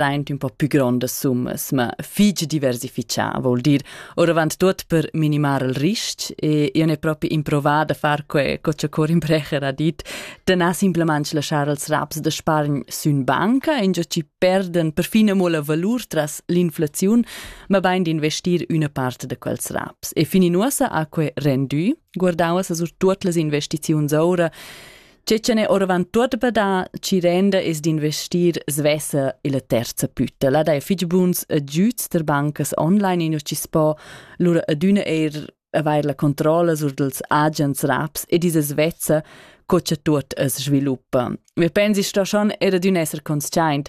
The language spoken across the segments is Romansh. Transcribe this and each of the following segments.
plaint ün po pü grondas summas, ma fich diversifichà, vol dir oravant tuot per minimar il risc e io n'he propi improvat da far que co cha Corin Brecher ha dit, da na simplamaing laschar els raps da spargn sün banca, ingio chi perdan perfin amo la valur tras l'inflaziun, ma bain d'investir üna part da quels raps. E fin in uossa ha que rendü, guardauva sa sur tuot las investiziuns oura, Cecene oravant tuot badà chi renda es d'investir svessa illa terza püttela da fich buns agüds ter bancas online in chi spo lura adüna eir avair la controlla sur dels agents raps e diese svezza co cha tuot as sviluppa. Me pensi sto schon era d'ün esser consciaint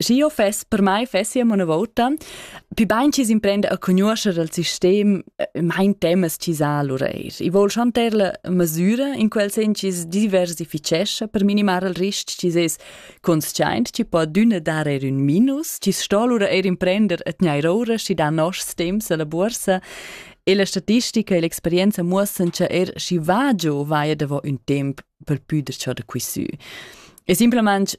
Schi io fess, per mai fessi amo una vota, pi bain chi s'imprenda a conoscer il sistem, eh, mein temas chi sa allura eir. I vol schon ter la masüra in quel sen chi diversifichescha per minimar il risc chi es consciaint chi po adüna dar eir ün minus, chi sto allura eir imprender a tgnair oura schi da noschs temps a la borsa e la statistica e l'experienza muossan cha er schi va giò vaia davo ün temp per püder ciò da quisü. E simplesmente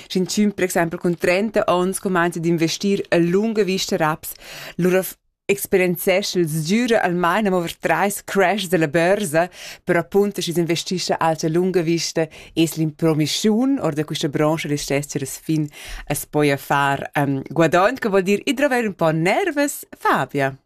Sch'inchün per exaimpel cun 30 ons cumainza d'investir a lunga vista raps, lura experienzescha il sgüra almain amo ver trais crash della börsa per appunto schi's investischa alcha lunga vista es l'impromischiun or da quista brancha restess as fin as poja far um, guadagn, che vuol dir ir dravair ün po nervus, Fabia?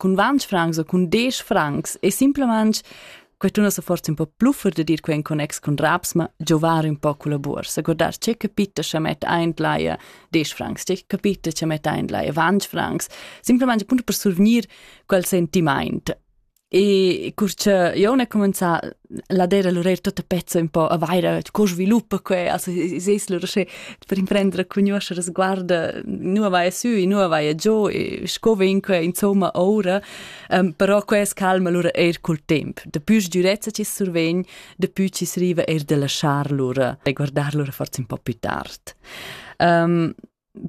cun ventg francs o cun desch francs e simplamaing que tuna sa forza ün po pluffer da dir quai in connex cun raps, ma giovar ün po culla buorsa. Guardar che capita cha mett aint laia desch francs, che capita cha mett aint laia ventg francs, simplamaing appunto per survgnir quel sentimaint. E cur cha eu n'he comenzà la dera lurer tutta pezza un po a vaira co sviluppa que also es lur sche per imprendere conoscere sguarda nu vai su e nu vai giù e sco vin que insomma ora um, però que es calma lur eir col temp de più durezza ci survegn de più ci sriva eir de lasciar lur e guardar lur forza un po più tard um,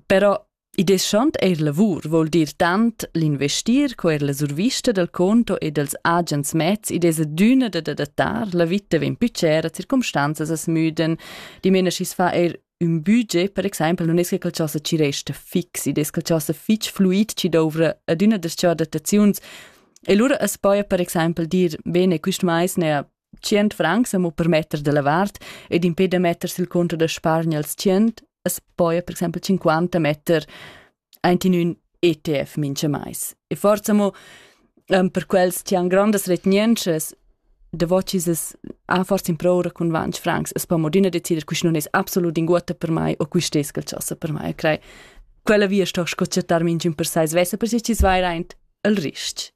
però I deschant eir lavur voul dir tant l'investir co eir la survista dal conto e dels agens mezs id es adüna da adattar, la vita vegn più cera, circumstanzas as müdan, dimena schi's fa eir ün budget, per exaimpel non es che qualchosa ci resta fix, id es qualchosa fich fluid chi douvra adüna das-cha adattaziuns E lura as poja per exaimpel dir, bene, quist mais n'haja tschient francs amo per metter dalla vart ed impè da metter sil conto da spargner als tschient as poja per exempel cinquanta metter aint in ün ETF mincha mais. E forsa amo ehm, per quels chi han grandas retgnientschas davocis es ha forsa improura cun vanch francs as po modina decider quist non es absolut inguotta per mai o quist es quel ch'ossa per mai. E crei quella via sto sco chattar minchün per sai svessa per si chi's vair aint el ris.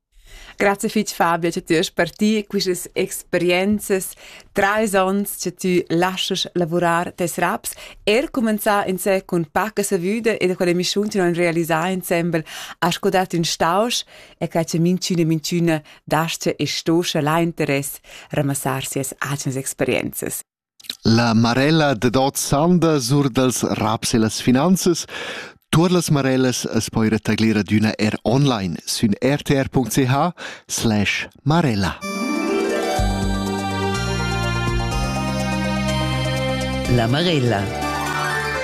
Grazie fitg Fabio che ti hast per ti quistas experienzas, treis onns che ti laschas lavurar tes raps, er cumenzar insé cun paca savüda e da quella emissiun che non realisar insembel a scodat in stausch e che che minciune minciune dasce e stosce la interess ramassar sias agens experienzas. La marella dad ot sanda sur dals raps e las finanzas Tuor las marellas as poi retagglir adüna er online sün rtr.ch slash marella. La marella